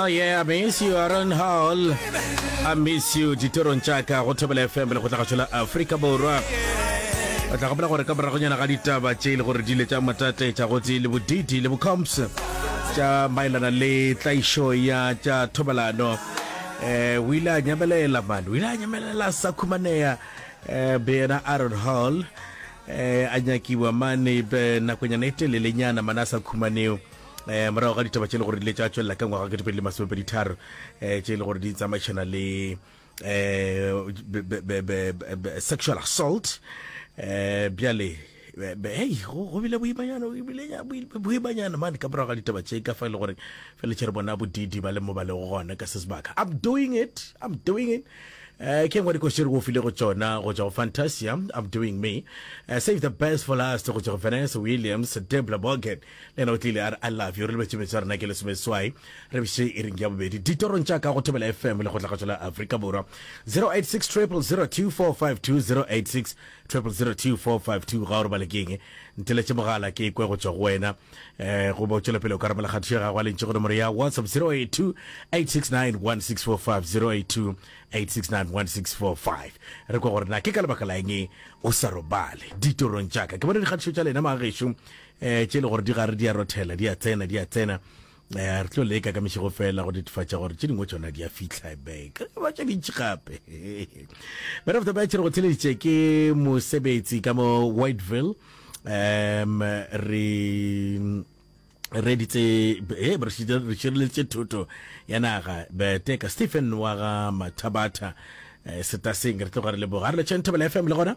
Oh yeah, I miss you Aaron Hall. I miss you ditorong tša ka go thobela FM le go tla gašola Afrika Borwa. O tla gopela gore ka boragonyana ga ditaba tše e le gore di ile tša matate tša gotse le bodidi le bocomps tša maelana le tlaišo ya tša thobalano um o ile a nyamelela mane o ile a nyamelela sa khumaneya um be yena aaron hall um a nyakiwa mane nakonyana e telelenyana mane a sa khumaneo um morago ga ditaba tše e le gore di le tša tswelela ka ngwaga ketepedi le masomepedi tharo um tše e le gore di tsamaišana le um sexual assault um bjale hei go bile boimanyana boimanyana mane ka morago ga ditaba tše ka fa e le gore fele tšhere bona bodidi ba le mo ba le gona ka se sebaka i'm doing it i'm doing it Eh, ke ngwe dikosere go file go tsona go tswa go fantasia i'm doing me eh, save the best for last go tswa go vanessa williams debla bogen le yena o tlile a re i love you re lebetše metso ya rena ke lesomeswai re bše e reng ya bobedi ditorong tša ka go thobela fm le go tlagatšo la afrika borwa 086 0002452 086 0002452 ga o robale ke eng nteletše mogala ke kwe go tšwa go wena um go botšwela pele o ka rabela kgatišo ya gago a lentše go nomoro ya whatsapp 082 869 1645 082 869 1645 re kwa gore na ke ka lebaka la eng o sa robale ditorong tša ka ke bone dikgatišo tša lena maagešo Eh, tše le gore di gare di a rothela, di a tsena, di a tsena. Eh, re tlo leka ka mešego fela go netefatša gore tše dingwe tšona di a fihla beka ba tše dintši gape bana of the batch re go theleditše ke mosebetsi ka mo whiteville um re reditse e re šireleditše thoto ya naga beteka stephen wa ga mathabatha eh, setaseng re tloga re leboga re le tšhenthabela fm le gona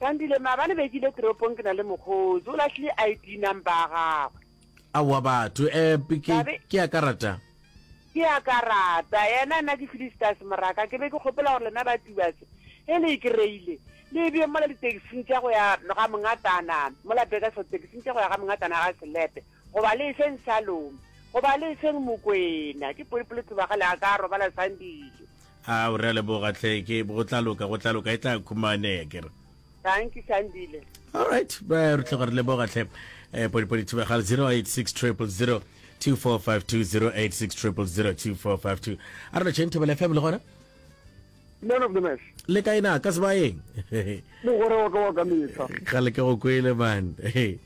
Sandile, Maabane be ke ile toropong ke na le mokgotsi, o lahlile ID number ya gagwe. Aowa batho, eh, ke, Thabe, ke ya ka rata. Ke ya ka rata, yena nna ke Felistas moraka, ke be ke kgopela gore lena ba Tubas ge le e kry-ile le e bee mola ditekising tša go ya ga mongatana mola Bakersfield, tekising tša go ya ga mongatana ga Selepe, goba le e feng Salome, goba le e feng Mokwena, ke polipolithuba ga le a ka robala Sandile. Ao, re a leboga hle, ke go tla loka, go tla loka, e tla khumaneya ke re. Dankie Sandile. All right, ba re tloga re leboga hle. Eh, podi podi thiba ga 086 000 2452 086 000 2452. A re lo tšheng thobela FM le gona? man of the match le ka ena ka sebayeng mogore wa ka wa ka mehla ga le ke go kwele man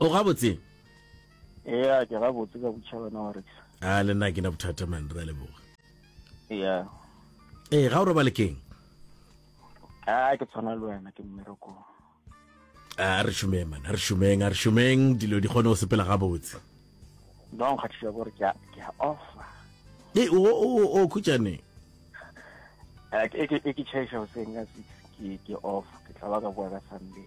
o gabotse ya ke gabotse ka botšha wena wa rekisa a le nna ke na bothata man ra leboga ya ee ga o robale keng a ke tshwana le wena ke mmerekong a re šomeng man a re šomeng a re šomeng dilo di kgone go sepela gabotse ba nkgathisa gore ke a offa e o o khutšane e ke chaiša goseng ka six ke off ke tla ba ka boa ka sunday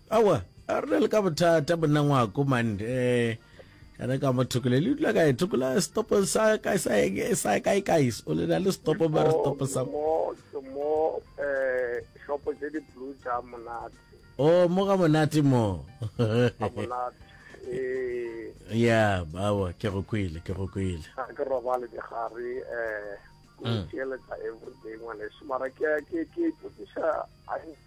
Aowa, a re na le ka bothata monna ngwako man eh kana ka mo thokole le dula kae thokola stopo sa ka sa sa ka ka is o le na le stopo ba re stopo sa mo ke mo eh shop tse di blue tsa monate o oh, mo ga monate mo monate eh ya bawa ke go kwile ke go kwile ga ke robale ke gare eh mm. ke le tsa everyday ngwane se mara ke ke ke ke sa a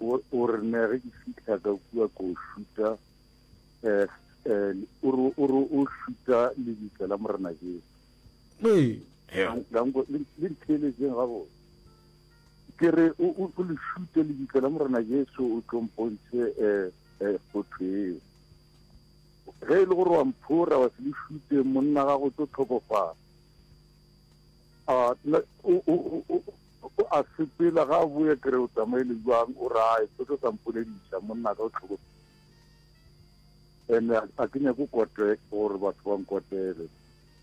O, o re ne ge ke fihla ka kua ko šuta, eh, eh, o re, o re o šuta lebitla la Morena Jesu. Ee. Yeah. La nko, le, le ntheeletseng gabotse. Ke re, o, o, o le šute lebitla la Morena Jesu, o tlo mpontšhe, eh, eh, kgotho eo. Ge e le gore wa mphora, wa se le šute, monna gago o tlo tlhokofala. Ah, na, o, o, o, o, O a sepela ga a boya kere o tsamaile jwang o rae se tlo sa mpolediša monna ka o tlhokomele ene a ke nyako kote gore batho ba nkotele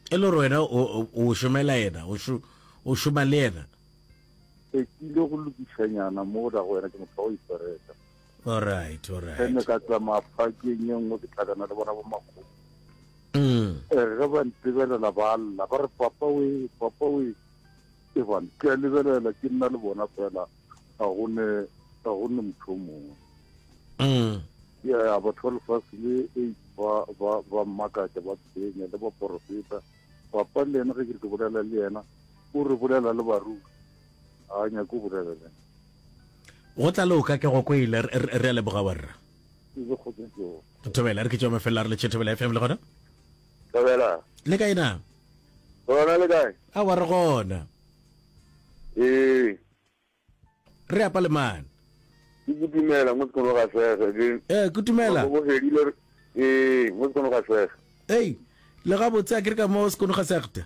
e le gore wena o šomela yena o šoma le yena e kile go lokišanyana mo da go wena ke motho wa go ipereka alright alright ene ka tsamaya phakeng e nngwe ke tlhakana le bona bo makgomo mm. eh, ge ba ntebelela ba lla ba re papa we papa we E bane, ke a lebelela, ke nna le bona fela, ga go ne, ga go ne motho o mongwe. Mm. Ya batho ba lefase le e ba ba ba mmakatša ba tshwenya le baporofeta papa le yena ge ke ke bolela le yena o re bolela le baruri ga a nyake o bolela le yena go tla le o ka ke go kwele re a leboga warra thobela re ke tšwa mafelela re le tšhe thobela fm le gona Thobela. Le kae na? Gona le kae? A wa re gona. Ee. Re apa le mane. Ke kutumela mo sekono ga sege. Ke Eh kutumela. Go fedile. Ee, mo sekono ga sege. Ei, le ga botse a ke re ka mo sekono ga sege.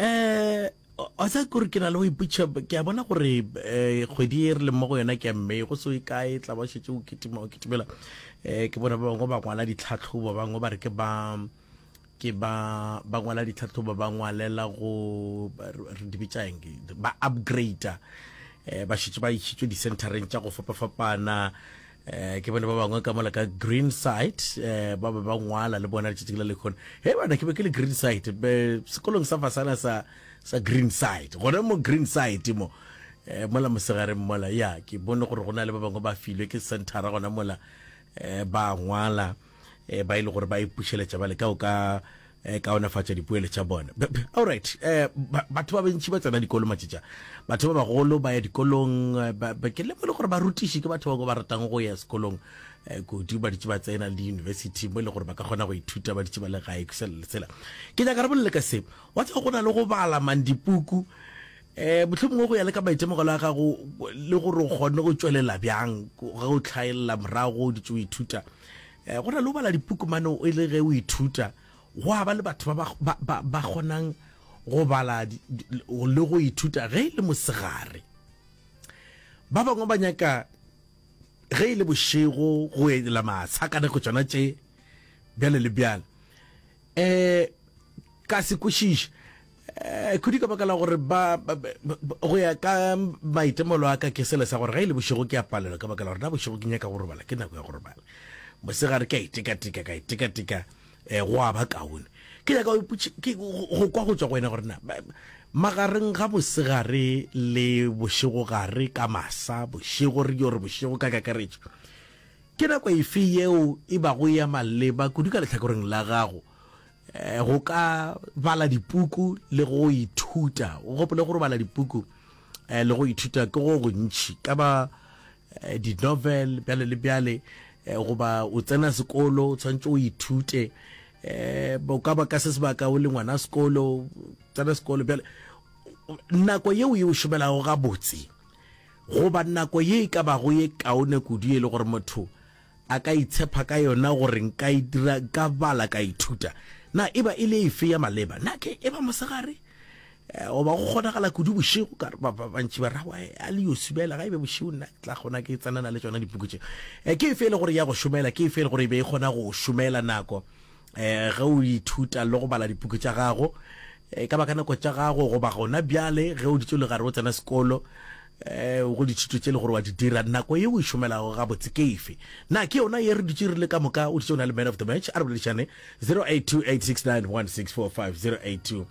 um wa sa kore ke na le go iputšha ke a bona gore um kgwedi e re leng mo go yona ke ya mme go so e kae tla ba šetse o kitima o kitimela um ke bona ba bangwe ba ngwala ditlhatlhobo ba bangwe ba re ke ba ke ba ba ngwala ditlhatlhobo ba ngwalela go re di bitšang ba upgrader um ba šetse ba išitswe di-centereng tša go fapafapana Eh, ke bone ba bangwe ka mola ka green side eh, ba be ba ngwala le bona letšatšing la lekgone he bana ke be ke le green side be sekolong sa fasana sa sa green side gona mo green side mo eh, mola mosegareng mola ya ke bone gore go na le ba bangwe ba filwe ke centera gona mola eh, ba ngwala eh, ba e le gore ba ipušeletša bale ka o ka eh, kaonefatša dipoelo tša bona allright eh, batho ba bentši ba tsena dikolo matšetša batho ba bagolo ba ya dikolong eh, ke lemo e le gore ba rutiši ke batho ba ba ratang go ya sekolong eh, kudu ba ditše ba tsena le di-university mo e le gore ba ka kgona go ithuta ba ditše ba le gae kusela lesela ke nyaka re bolele ka se wa tseba go na le go bala mang dipuku Ee, mohlomongwe go ya le ka maitemogelo a gago le gore o kgonne go tšwelela bjang ge o hlaelela morago o ditse o ithuta. Ee, go na le o bala dipuku mane e le ge o ithuta, go a ba le batho ba ba ba ba kgonang go bala le go ithuta ge e le mosegare. Ba bangwe ba nyaka ge e le bošego go ela matsha ka nako tšona tše bjale le bjale. Ee, ka se kwešiše Eh, khudu ka baka la gore ba go ya ka maitemolo a ka ke sele sa gore ga e le bošego ke a palelwa ka baka la gore na bošego ke nyaka go robala ke nako ya go robala mosegare ke a itekatika ka itekatika um go a ba kaone ke nyaka go kwa go tswa go wena gore na magareng ga mosegare le bošego gare ka masa bošego re yo re bošego ka kakaretso ke nako efe yeo e bago ya maleba kudu ka letlhakoreng la gago Eh, go ka bala dipuku le go ithuta o gopole gore bala dipuku eh, le go ithuta ke go gontšhi ka ba eh, di-novel bjale le bjale eh, goba o tsena sekolo o tshwanetse o ithute eh, o ka ba ka se sebaka o le ngwana sekolo tsena sekolo bjale nako yeo e o šomelago gabotse goba nako ye e ka bago ye kaone kudu e le gore motho A ka itshepha ka yona gore nka e dira, nka bala, ka ithuta. Na e ba e le efe ya maleba? Na ke e ba mosegare? Eh, goba go kgonagala kudu bošego? Ka ba ba bantši ba rawa eh, a le yo subela ga e be bošego nna ke tla kgona ke tsenana le tšona dipuku tše. Eh, ke efe e le gore ya go šomela? Ke efe e le gore e be e kgona go šomela nako Eh, ge o ithuta le go bala dipuku tša gago eh, ka baka nako tša gago goba gona bjale ge o ditšo le gare o tsena sekolo eh, go dithuto tše le gore wa di dira nako ye o e šomelago gabotse ke efe na ke yona ye re dutše re le ka moka o ditše o na le man of the match a re boledišane 0828691645 082